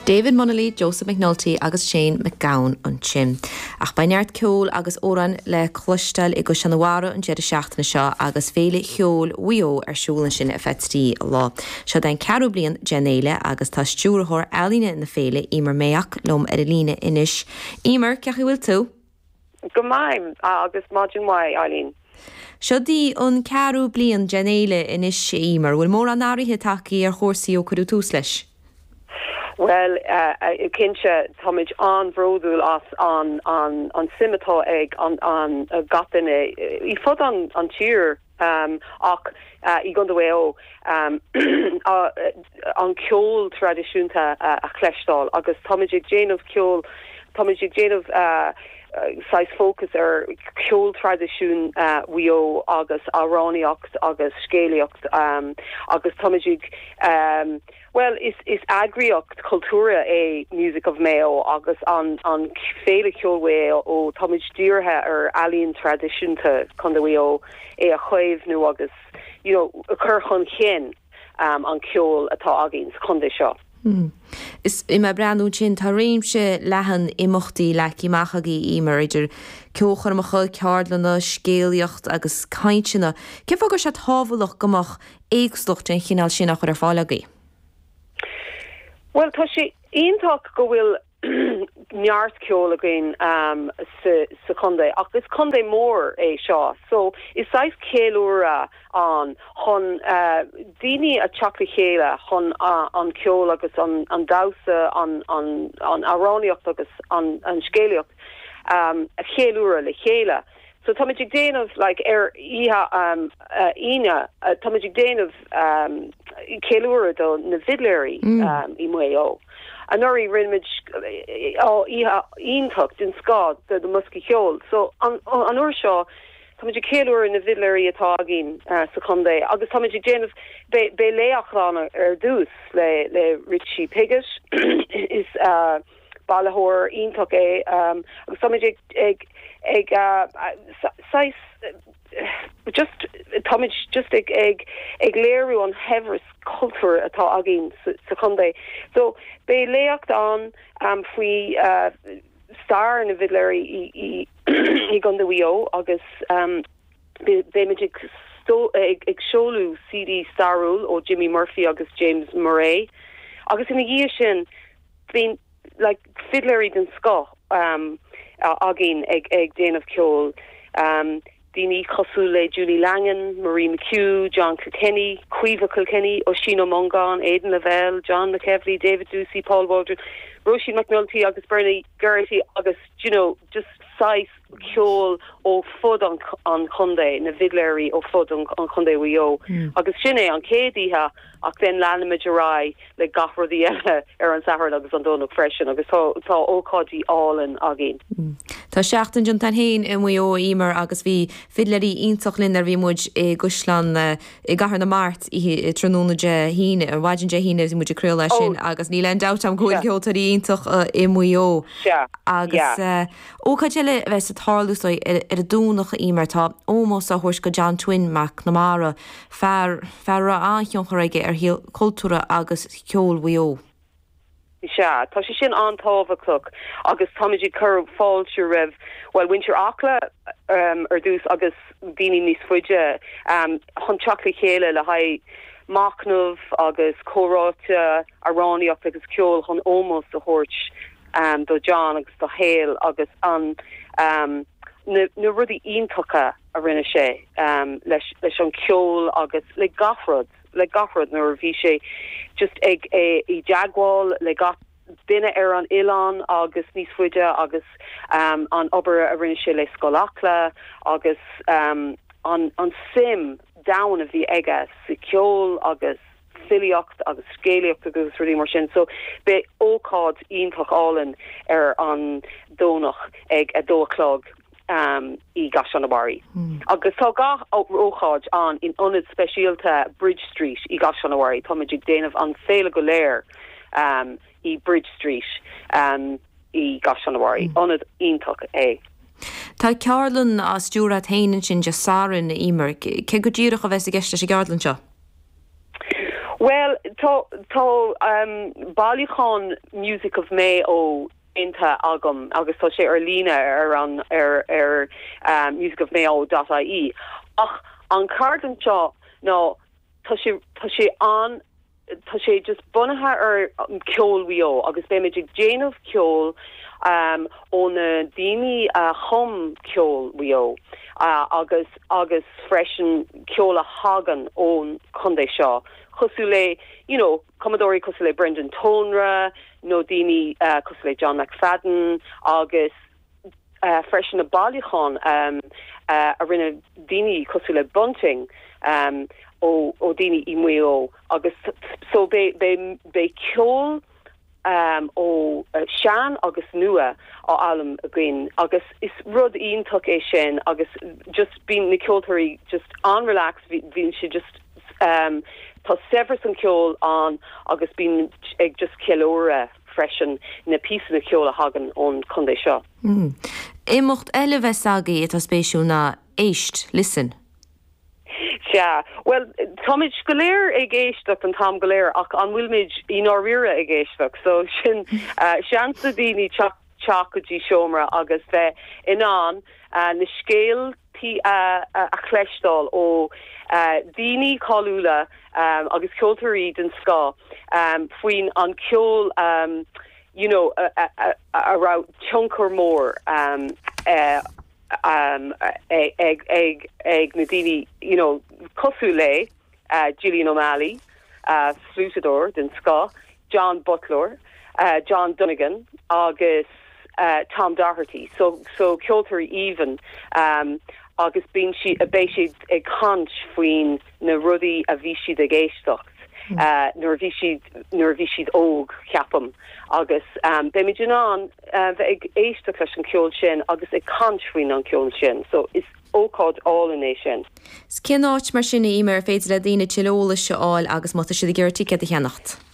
David Munnelly, Joseph McNulty agus Shane MacGowan ansin. Ach beidh neart ceoil agus amhráin le cloisteáil i gCaisleán an Bharraigh an deireadh seachtaine seo agus Féile Cheoil Mhaigh Eo ar siúl ansin ar feadh trí lá. Seo é an ceathrú bliain den fhéile agus tá Stiúrthóir Ealaíne na féile, Emer Mayock, liom ar an líne anois. Emer, cén chaoi a bhfuil tú? Go maith agus maidin mhaith, Eileen. Seo í an ceathrú bliain den fhéile anois, Emer. Bhfuil mórán athruithe tagtha ar chúrsaí ó cuireadh tús leis? Bhuel, cinnte, táimid an-bhródúil as an suim atá ag gach duine ar fud an tír. Ach i gContae Mhaigh Eo, an ceol traidisiúnta a chloisteáil agus táimid ag déanamh ceol, táimid ag déanamh saghas fócas ar cheol traidisiún Mhaigh Eo agus amhránaíocht agus scéalaíocht agus táimid ag. Bhuel, is eagraíocht chultúrtha é Music of Mayo agus an Féile Cheoil Mhaigh Eo. Táimid dírithe ar ealaín traidisiúnta Chontae Mhaigh Eo, é a chaomhnú agus a chur chun chinn an ceol atá againn sa chontae seo. Is mé ag breathnú ansin, tá réimse leathan imeachtaí leagtha amach agaibh, Emer, idir ceolchoirmeacha, ceardlanna, scéalaíocht agus cainteanna. Cén fáth a bhfuil sé tábhachtach go mbeadh éagsúlacht den chineál sin á chur ar fáil agaibh? Bhuel, tá sé iontach go bhfuil neart ceoil againn sa chontae ach is contae mór é seo so is saghas ceiliúradh ann chun daoine a theacht le chéile chun an ceol agus an damhsa, an amhránaíocht agus an scéalaíocht a cheiliúradh le chéile. So táimid ag déanamh, like, ar oíche Aoine, táimid ag déanamh ceiliúradh do na bhfidléirí i Maigh Eo. Anuraidh rinneamid oíche iontach den scoth do na mboscaí ceoil. So an uair seo táimid ag ceiliúradh na bhfidléirí atá againn sa chontae agus táimid ag déanamh, beidh léacht ann ar dtús le Richie Piggot is. bailitheoir iontach é agus táimid ag ag saghas just táimid just ag ag ag léiriú an shaibhreas cultúir atá againn sa chontae so beidh léacht ann faoi stair na bhfidléirí i i i gcontae Mhaigh Eo agus beimid ag so ag ag seoladh CD stairiúil ó Jimmy Murphy agus James Murray agus ina dhiaidh sin bíonn fidléirí den scoth againn ag déanamh ceoil, daoine cosúil le Julie Langan, Marie McHugh, John Kilkenny, Caoimhe Kilkenny, Oisín Ó Mongáin, Aidan Lavelle, John McEvilley, David Doocey, Paul Waldron, Róisín McNulty agus Bernie Geraghty agus you know just saghas ceoil ó fud an chontae, na bhfidléirí ó fud an Chontae Mhaigh Eo agus sin é an chéad oíche ach then leanfaimid ar aghaidh le gach rudaí eile ar an Satharn agus an Domhnach freisin agus tá ócáidí álainn againn. Tá seachtain déanta againn féin i Maigh Eo, a Emer, agus bhí fidléirí iontach linn nuair a bhí muid i gCaisleán i gCathair na Mart tráthnóna Dé hAoine, ar mhaidin Dé hAoine a bhí muid ag craoladh as sin agus níl aon dabht agam go bhfuil ceoltóirí iontach i Maigh Eo agus. Ócáid eile a bheas ag tarlú sa ar an Domhnach Emer, tá ómós á thabhairt do John Twin McNamara, fear, fear a raibh an-thionchar aige ar shaol cultúrtha agus ceoil Mhaigh Eo. Sea, tá sé sin an-tábhachtach agus táimid ag cur fáilte roimh, bhuel, mhuintir Acla ar dtús agus daoine níos faide chun teacht le chéile le haghaidh machnamh agus comhráite, amhránaíocht agus ceol chun ómós a thabhairt. do John agus dá shaol agus na rudaí iontacha a rinne sé leis an cheol agus le gach rud, le gach rud nuair a bhí sé just ag i dteagmháil le gach duine ar an oileán agus níos faide agus an obair a rinne sé le Scoil Acla agus an suim domhain a bhí aige sa cheol agus. filíocht agus scéalaíocht agus rudaí mar sin. So beidh ócáid iontach álainn ar an Domhnach ag a dó a chlog i gCaisleán an Bharraigh. Agus tá gach ócáid ann in ionad speisialta Bridge Street i gCaisleán an Bharraigh. Táimid ag déanamh an féile go léir i Bridge Street i gCaisleán an Bharraigh. Ionad iontach é. Tá ceardlann á stiúradh agat féin ansin Dé Sathairn, a Emer. Céard go díreach a bheas i gceist leis an gceardlann seo? Bhuel, tá, tá bailiúchán Music of Mayo déanta agam agus tá sé ar líne ar an, ar, ar music of mayo dot ie ach an cheardlann seo ná tá sé, tá sé an, tá sé just bunaithe ar cheol Mhaigh Eo agus beimid ag déanamh ceol ó na daoine a chum ceol Mhaigh Eo agus. agus freisin ceol a thagann ón chontae seo cosúil le you know cumadóirí cosúil le Brendan Tonra nó daoine cosúil le John McFadden agus freisin na bailiúcháin a rinne daoine cosúil le Bunting ó dhaoine i Maigh Eo agus so beidh ceol ó sean agus nua á fhoghlaim againn agus is rud iontach é sin agus just bíonn na ceoltóirí just an-relaxed bíonn siad just tá saibhreas an cheoil ann agus bíonn ag just ceiliúradh freisin na píosanna ceoil a thagann ón chontae seo. Imeacht eile a bheas agaibh atá spéisiúil ná Éist, Listen. Sea. Bhuel, táimid go léir ag éisteacht an t-am go léir ach an bhfuilimid i ndáiríre ag éisteacht? So sin seans do dhaoine teacht go dtí seomra agus bheith in ann na scéaltaí a chloisteáil ó dhaoine cáiliúla agus ceoltóirí den scoth faoin an ceol you know a raibh tionchar mór ag na daoine you know cosúil le Gillian O'Malley, fliúiteadóir den scoth, John Butler, John Donegan agus Tom Doherty, so ceoltóirí aoibhinn, agus bíonn siad beidh siad ag caint faoin na rudaí a bhí siad ag éisteacht nuair a bhí siad nuair a bhí siad óg ceapaim agus beimid in ann bheith ag éisteacht leis an ceol sin agus ag caint faoin an ceol sin so is ócáid álainn é sin. Is cén áit mar sin a Emer ar féidir le daoine tuilleadh eolais a fháil agus má tá siad ag iarraidh ticéad a cheannacht?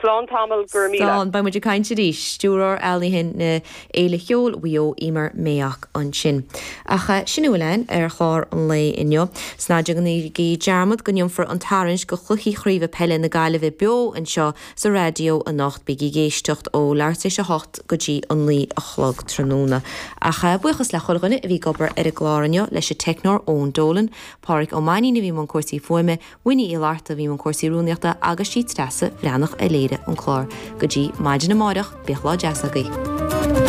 Slán tamall, go raibh míle. Slán, beidh muid ag caint arís. Stiúrthóir Ealaíne na Féile Cheoil Mhaigh Eo, Emer Mayock ansin. Ach sin a bhfuil ann ar chlár an lae inniu. Is ná déanaigí dearmad go ndéanfar an tarraingt do Chluichí Craoibhe Peile na Gaillimhe beo anseo sa raidió anocht. Bígí ag éisteacht ó leath tar éis a hocht go dtí a naoi a chlog tráthnóna. Ach buíochas le chuile dhuine a bhí ag obair ar an gclár inniu, leis an teicneoir Eoin Dolan, Pádhraic Ó Mainín a bhí i mbun cúrsaí fuaime, Winnie Uí Fhlatharta a bhí i mbun cúrsaí rúnaíochta agus is í Treasa Bhreathnach a léirigh an clár. Go dtí maidin amárach, bíodh lá deas agaibh.